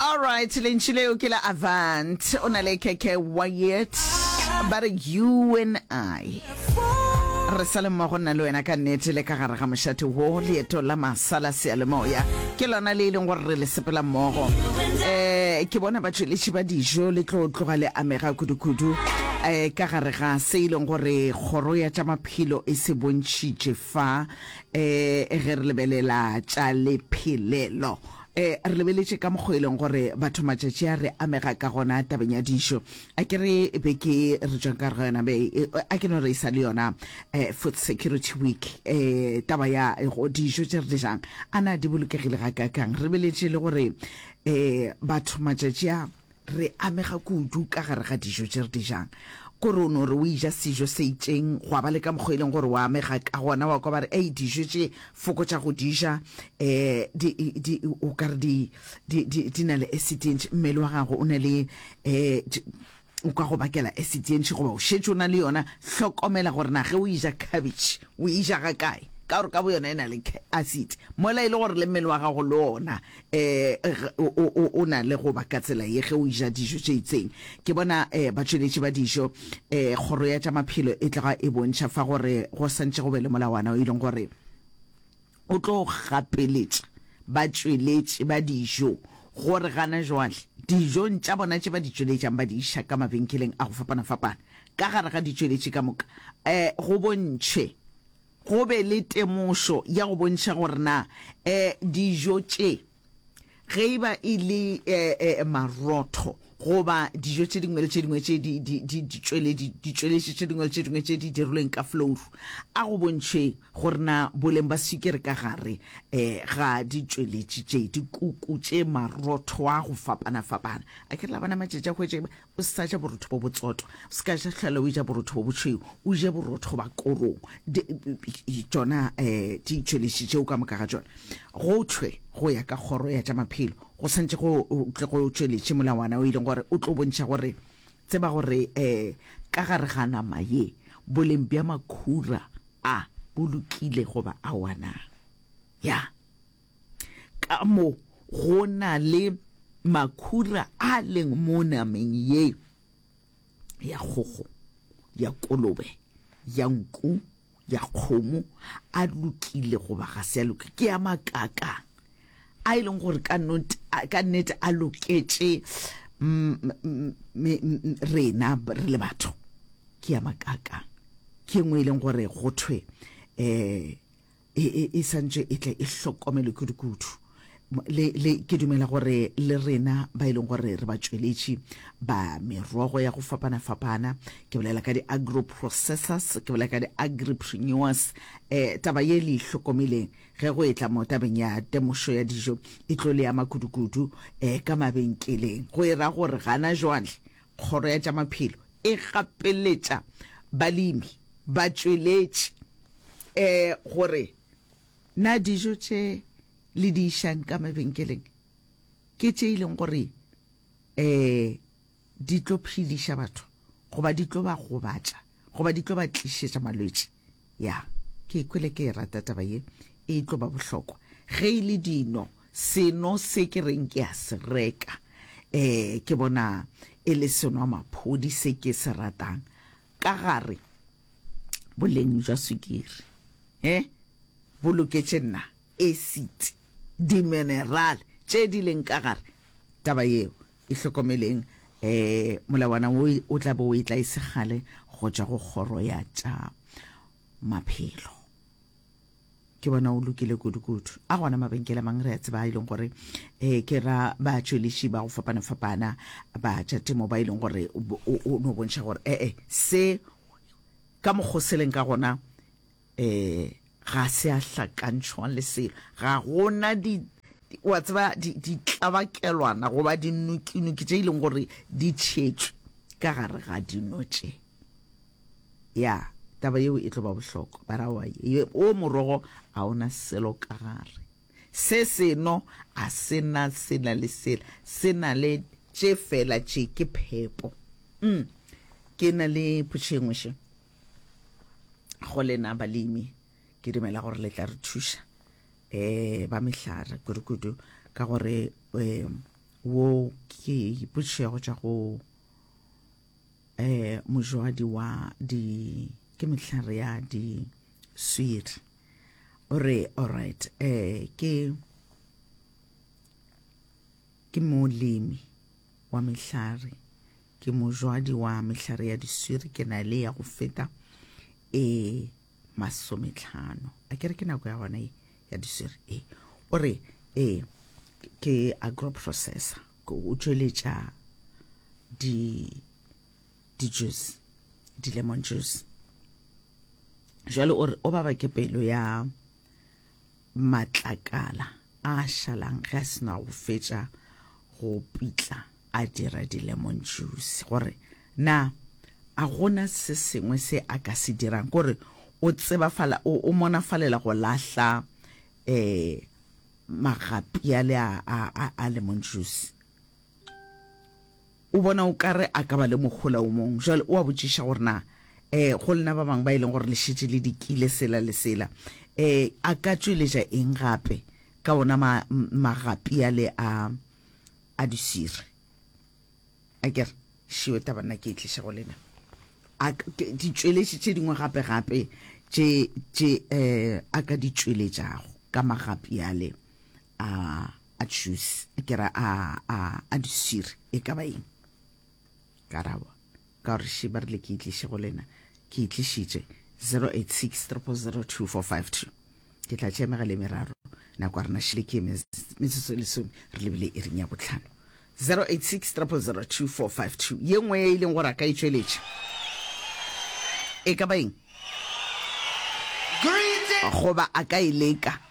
Alright, lentši leo ke la Avant. O na le Keke Wyatt. Ba re you and I. Re sa le mmogo nna le wena ka nnete le ka gare ga mošate wo leeto la masala sealemoya ke lona le e leng gore re le sepela mmogo um ke bona batšweletši ba dijo le tlo tloga le amega kudu-kudu um ka gare ga se e leng gore kgoro ya tša maphelo e se bontšhitše fa Eh, ge re lebelela tša lephelelo, eh, re lebeletše ka mokgwa e leng gore batho matšatši a re amega ka gona tabeng ya dijo. A ke re be ke re tšwang ka re yona be e, a ke no re e sa le yona eh, Food Security Week, eh, taba ya go dijo tše re di jang a na di bolokegile ga kakang. Re lebeletše le gore eh, batho matšatši a Re amega kudu ka gare ga dijo tše re di jang. Gore o no re o eja sejo se itšeng, gwa ba le ka mokgwa e leng gore o amega ka gona, wa kwa ba re, Ei, dijo tše, fokotša go di ja, um di, di, o ka re di, di, di, di na le acid e ntši, mmele wa gago o na le, um o ka go bakela acid e ntši goba o šetše o na le yona. Hlokomela gore na ge o eja khabetšhe o eja ga kae, ka gore ka boyona e na le acid, mola e le gore le mmele wa gago le ona Eg, o, o, o, o na le go ba ka tsela ye ge o eja dijo tše itseng. Ke bona eh, batšweletši ba dijo, eh, Kgoro ya tša Maphelo e tloga e bontšha fa gore go santše go be le molawana o e leng gore o tlo gapeletša batšweletši ba dijo gore gana joale dijong tša bona tše ba di tšweletšang ba di iša ka mabenkeleng a go fapana-fapana ka gare ga ditšweletši ka moka, eh, go bontšhwe. Go be le temošo ya go bontšha gore na dijo tše, ge e ba e le marotho goba dijo tše dingwe le tše dingwe tše ditšweletši tše dingwe le tše dingwe tše di dirilweng ka flouru, a go bontšhwe gore na boleng ba swikiri ka gare ga ditšweletši tše, dikuku tše, marotho a go fapana-fapana. A ke re la bona matšatši a go etša eng? O se sa ja borotho bo botsotwa, o se ka ja hlwela o eja borotho bo bošweu, o je borotho goba korong, tšona um ditšweletši tšeo ka moka ga tšona. Go thwe go ya ka kgoro ya tša maphelo, go swantše go tle go tšweletše molawana o e leng gore o tlo bontšha gore, tseba gore um ka gare ga nama ye, boleng bja makhura a bo lokile goba aowa na. Ya. Ka mo go na le makhura a leng mo nameng ye ya kgogo, ya kolobe, ya nku, ya kgomo, a lokile goba ga se a loke, ke a makaka a e leng gore ka nnete a- ka nnete a loketše mm, mm, me- mm, rena re le batho. Ke a makaka ke ngwe e leng gore go thwe eh e, e, e santše e tle e hlokomelwe kudu-kudu le, le ke dumela gore le rena ba e leng gore re batsweletši ba merogo ya go fapana-fapana ke bolela ka di-agro processors ke bolela ka di-agripreneurs um taba ye le ihlokomeleng ge go etla mo tabeng ya temošo ya dijo e tlo le ya makudu-kudu um eh, ka mabenkeleng go e ra gore gana jwale kgoro ya tša maphelo e gapeletša balemi batsweletši Ee, gore na dijo tše le di išang ka mabenkeleng ke tše e leng gore ee di tlo phediša batho goba di tlo ba gobatša goba di tlo ba tlišetša malwetši. Ya, ke ikwele ke e rata taba ye, e tlo ba bohlokwa. Ge e le dino, seno se ke reng ke a se reka ee ke bona e le senwamaphodi se ke se ratang ka gare. boleng jwa swikiri e bo loketše nna, acid, dimineral tše di leng ka gare. Taba yeo e hlokomeleng, um molawana wo o tla be o e tla e se kgale go tšwa go Kgoro ya tša Maphelo. Ke bona o lokile kudu-kudu. A gona mabenkele a mang re a tseba a e leng gore um ke ra batšweliši ba go fapana-fapana ba tša temo ba e leng gore o no bontšha gore ee eh, se ka mokgoseleng ka gona um ga se a hlakantšhwang le selo ga gona di wa tseba ditlabakelwana goba dinukinuki tše e leng gore di tšhetšwe ka gare ga dino tše Ya, taba yeo e tlo ba bohlokwa, baragwa. Ye, wo morogo ga o na selo ka gare. Se seno ga se na sela le sela, se na le tše fela tše, ke phepo. Um, ke na le potšo e nngwe še go lena balemi. Ke dumela gore le tla re thuša, um, ba mehlare kudu-kudu, ka gore, um, wo ke potšo ya go tšwa go. um mojwadi wa di ke mehlare ya di swiri o re alright um ke ke molemi wa mehlare ke mojwadi wa mehlare ya diswiri ke na le ya go feta e masometlhano a kere ke nako ya gona e ya diswiri e o re e ke agro processor o tšweletša di di juice di lemon juice jalo o re o baba ke pelo ya matlakala a šalang ge a sena go fetša go pitla a dira di lemon juice gore na a gona se sengwe se a ka se dirang gore o tsebafala o monafalela go lahla eh magapi ale a, a, a, a lemon juice. O bona o ka re a ka ba le mohola o mong. Jwale o a botšiša gore na eh, go lena ba bangwe ba e leng gore le šetše le dikile sela le sela, eh, a ka tšweletša eng gape ka ona ma, magapi ale a, a diswiri? a ke re šio taba nna ke e tliša go lena a ditšweletši tše dingwe gape gape tše tše eh a ka di tšweletšago ka magapi ale a a juice ke ra a a a disiri e ka ba eng karabo Ka gore še ba rile ke e tliše go lena, ke e tlišitše. 0863002452. Ke tla tšea megala e meraro, nako ya rena šele ke ye metsotso e lesome, re lebile iring ya bohlano. 0863002452. Ye nngwe ya e leng gore a ka e tšweletša e ka ba eng? Goba a ka e leka.